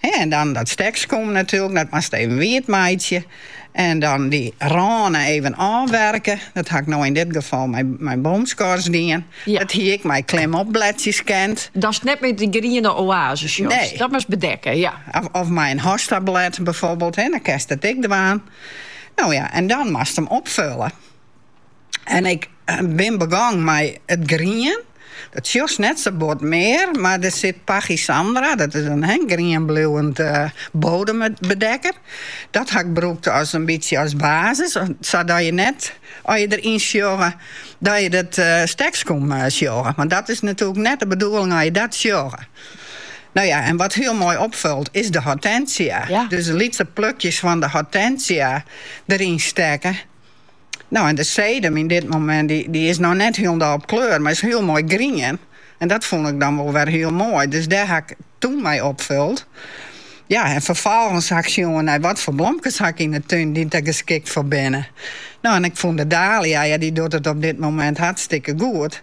En dan dat stekskom natuerlik, dat moatst even wietmeitsje. En dan dy rânen even ôfwerke. Dat ha ik no yn dit gefal mei boomskors dien. Dat hie ik ek mei klimopbledsjes kend. Datst net mear dy griene oase sjochst. Nee. Dat moatst bedekke, ja. Of mei in hostablêd byfoarbyld, dan kinst it ek dwaan. No ja, en dan moatst him opfullen. En ik bin begong mei it grien. Dat sjochst net sa bot mear, mar der sit Pachysandra, dat is in grienbliuwend bodembedekker. Dat ha ik brûkt as in bytsje as basis, sadat je net as je der yn sjogge dat je dat stekskom sjogge. Want dat is natuerlik net de bedoeling as je dat sjogge. No ja, en wat hiel moai opfollet is de hortensia. Dus lytse plukjes fan de hortensia deryn stekke. No en de sedum op dit momint dy is noch net hielendal op kleur, mar is hiel moai grien. En dat fûn ik dan wol wer hiel moai. Dus dêr ha ik toen mei opfuld. Ja, en ferfolgens ha ik sjoen nei wat foar blomkes ha ik yn 'e tún dy't der geskikt foar binne. No en ik fûn de dalia, ja dy docht it op dit momint hartstikke goed.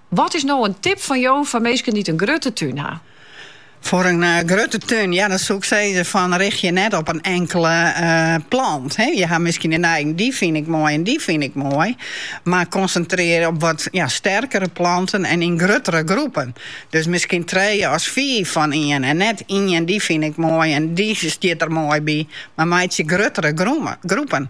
Wat is no in tip fan jo foar minsken dy't in grutte tún ha? Foar in grutte tún, ja, dan soe ik sizze fan rjochtsje je net op in inkele plant. Je ha miskien de neiging dy fyn ik moai en dy fyn ik moai. Mar konsintrearje op wat sterkere planten en yn gruttere groepen. Dus miskien trije à fiif fan ien en net ien dy fyn ik moai en dy stiet der moai by. Mar meitsje gruttere groepen.